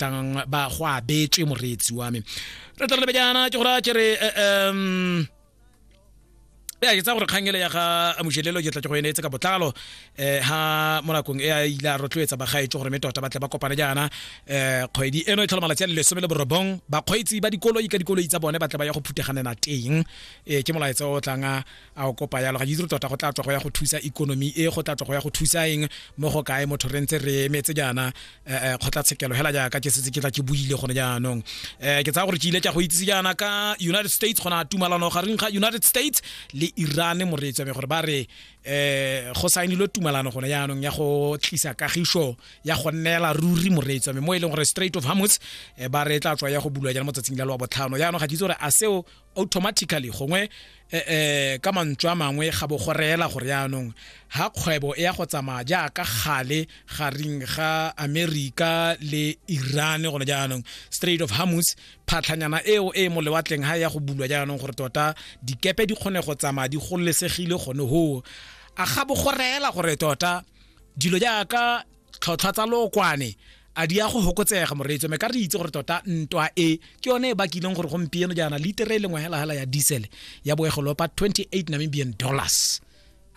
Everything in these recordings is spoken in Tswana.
ratang ba go abetswe moreetsi wa me re tla lebe jaana ke gore a kere um ya ke tsa gore kgangele ya ga mojelelo ke tla ke go eneetse ka botlalo um ha mo nakong e a ile a rotloetsa bagaetso gore me tota ba tle ba kopane jaana um kgwedi eno e tlhola malatsi a le lesome le borobong bakgweetsi ba dikoloi ka dikoloi tsa bone ba tle ba ya go phuteganela teng um ke molaetsa o tlang a o kopa yalo ga ke itse tota go tla tswa go ya go thusa economy e go tla tswa go ya go thusa eng mo go kae motho re ntse re emetse jaana eh, eh, kgotlatshekelo hela jaaka ke setse ke tla ke buile gone jaanong um ke tsaya gore ke ile ka go itsise jaana ka united states gona tumalano gareng ga united states le iran moreetso me gore ba re um go saenilwe tumalano gone jaanong ya go tlisa kagišo ya go neela ruri moreetso me mo e leng gore straight of hamus ba re tla tswa ya go bulwa jaana mo tsatsing la loa botlhano jaanong ga ke itse gore a seo automatically gongwe eh, eh, ka mantswe a mangwe ga bo go reela gore yaanong ha kgwebo e ya go tsamaya jaaka gale gareng ga america le iran gone jaanong straight of hamus phatlhanyana eo e mo lewatleng ha ya go bulwa jaanong gore tota dikepe di kgone go tsamaya di golesegile gone hoo a ga bo go reela gore tota dilo jaaka tlhotlhwa tsa lookwane a di ya go fokotsega moreetso me ka re itse gore tota ntwa e ke yone e bakileng gore gompieno jaana litere e lengwe helahela ya diesel ya boegolopa 28 namibian dollars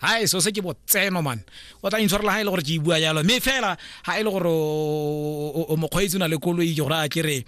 ha e so se ke botseno man o tla intshwarela ha e le gore ke e bua jalo mme fela ha e le gore o mokgweetsi o na le koloi ke gore a ke re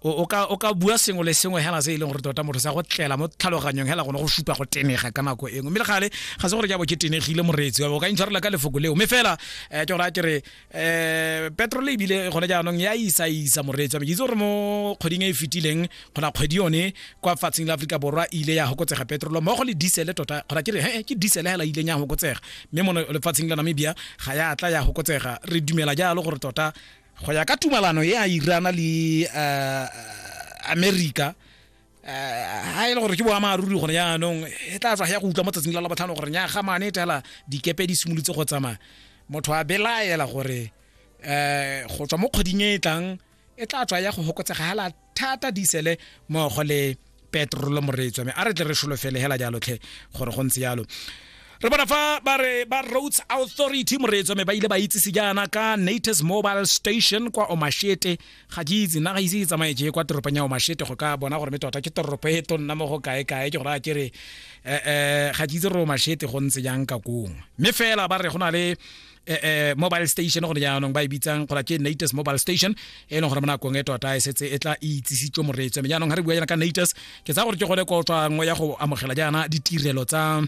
o ka o ka bua sengwe le sengwe hela se e leng gore tota motho sa go tlela mo tlhaloganyong hela gone go supa go tenega ka nako engwe mme le gale ga se gore ke abo ke tenegile moreetsi wa o ka intshwarela ka lefoko leo mme fela eh, ke gore a ke re um petrol ebile gone jaanong ya isa isa moreetsi wa me ke itse gore mo kgweding e e fetileng kgona kgwedi yone kwa fatsheng la aforika borwa e ile ya gokotsega petrolo mmogo le diesele tota kgona ke re he ke diesele hela e ileng ya gokotsega mme mo lefatsheng la namibia ga ya tla ya gokotsega re dumela jalo gore tota go ya ka tumalano ya irana le uh, america ha e le gore ke boammaaruri gone jaanong e tla tswa ya go utlwa mo tsatsing la la botlhano gore nyaga mane tela dikepe di simolotse go tsamaya motho a belaela gore um go tswa mo kgweding e e tlang e tla tswa ya go fokotsega ga la thata disele mogo le petrolo moreetswa me a re tle re solofele hela jalotlhe gore go ntse jalo re bona fa ba re ba roads authority moreetso me ba ile ba itsise jaana ka natus mobile station kwa omashete ga ke itse nna ga ise ke tsamaye je kwa toropong ya omashete go ka bona gore me tota ke toropo e tonna mo go kae kae ke gore a kere um ga ke itse gore omashete go ntse jang ka kongwe mme fela ba re go na le Eh, eh, mobile station gone jaanong ba e bitsang gola ke natus mobile station e leng gore mo nakong e tota e setse e tla e itsisitswe moreetswe mme jaanong ga re bua jaana ka natus ke tsa gore ke gone ko tswa nngwe ya go amogela jaana ditirelo tsa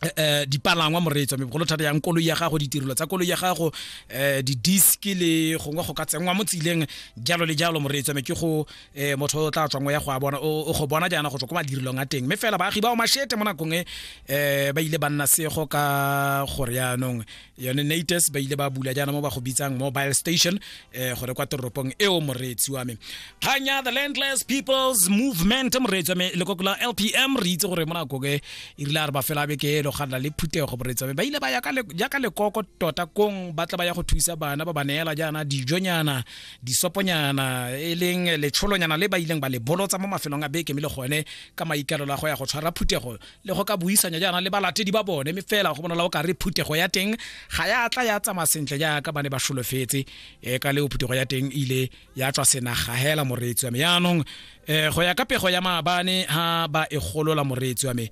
Eh, eh, dipalangwa moreetso mme bogolo thata yang koloi ya gago ditirelo tsa koloi ya gago um di-disk le gongwe go ka tsenngwa mo tseleng jalo le jalo moreetso mme ke go e motho o tla tswang ya go a bona o go bona jaana go tswa ko madirilong a teng mme fela baagi ba o mashete mo nakong e um ba ile ba nna sego ka gore yaanong yone nates ba ile ba bula jaana mo ba go bitsang mobile station um gore kwa toropong eo moreetsi wa me kganya the landless peoples movement moreetsi wa me lekoko la lpm re itse gore mo nakong e e rile a re ba fela beke elo ga nna le phutego moreetsi wa me ba ile ba ya ka lekoko tota kong ba tla ba ya go thusa bana ba ba neela jaana dijonyana disoponyana e leng letsholonyana le ba ileng ba le bolotsa mo mafelong a beke mme le gone ka maikalelo a go ya go tshwara phuthego le go ka buisanya jaana le balatedi ba bone mme fela go bonala o ka re phuthego ya teng ga ya tla ya tsamaya sentle jaaka ba ne ba solofetse um ka leo phuthego ya teng ile ya tswa senaga hela moreetsi wa me yaanong um go ya ka pego ya maabane ha ba e golola moreetsi wa me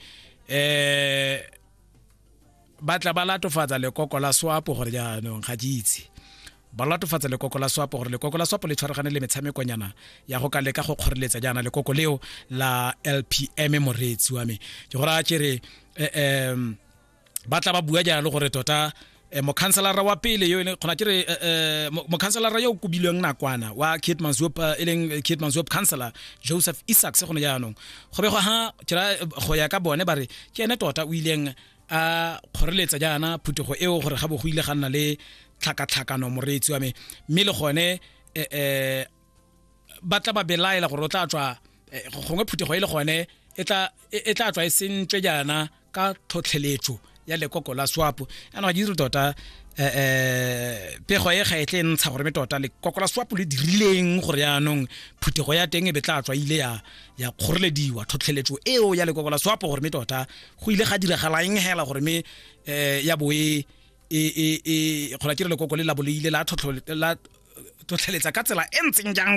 um ba tla ba latofatsa lekoko la swapo gore jaanong ga ke itse ba latofatsa lekoko la swapo gore lekoko la swapo le tshwaragane le metshamekonyana ya go ka leka go kgoreletsa jaana lekoko leo la lpm moreetsi wa me ke gore a kere um ba tla ba bua jalo gore tota eh, mokhanselara wa pele yo e kgona kere eh, eh, mokhanselara yo o kobilweng nakwana wa kitmansop e leng kitmansop councilor joseph isaacs gone jaanong go be go ha go ya ka bone ba re ke ene tota o ileng a kgoreletsa jaana phuthego eo gore ga bo go ile ga nna le tlhakatlhakano moreetsi wa me mme le gone um ba tla ba belaela gore o tla tswa eh, gongwe phuthego e le gone e tla e, e tswa e sentswe jaana ka tlhotlheletso ya lekoko la swapo ana ga ke dire tota um pego e ga e tle e ntsha gore me tota lekoko la swapo le dirileng gore yaanong phuthego ya teng e be tla tswa ile ya kgorelediwa tlhotlheletso eo ya lekoko la swapo gore me tota go ile ga diragala eng hela gore me um ya bo e gona ke re lekoko le labo le ile la tlhotlheletsa ka tsela e ntseng jang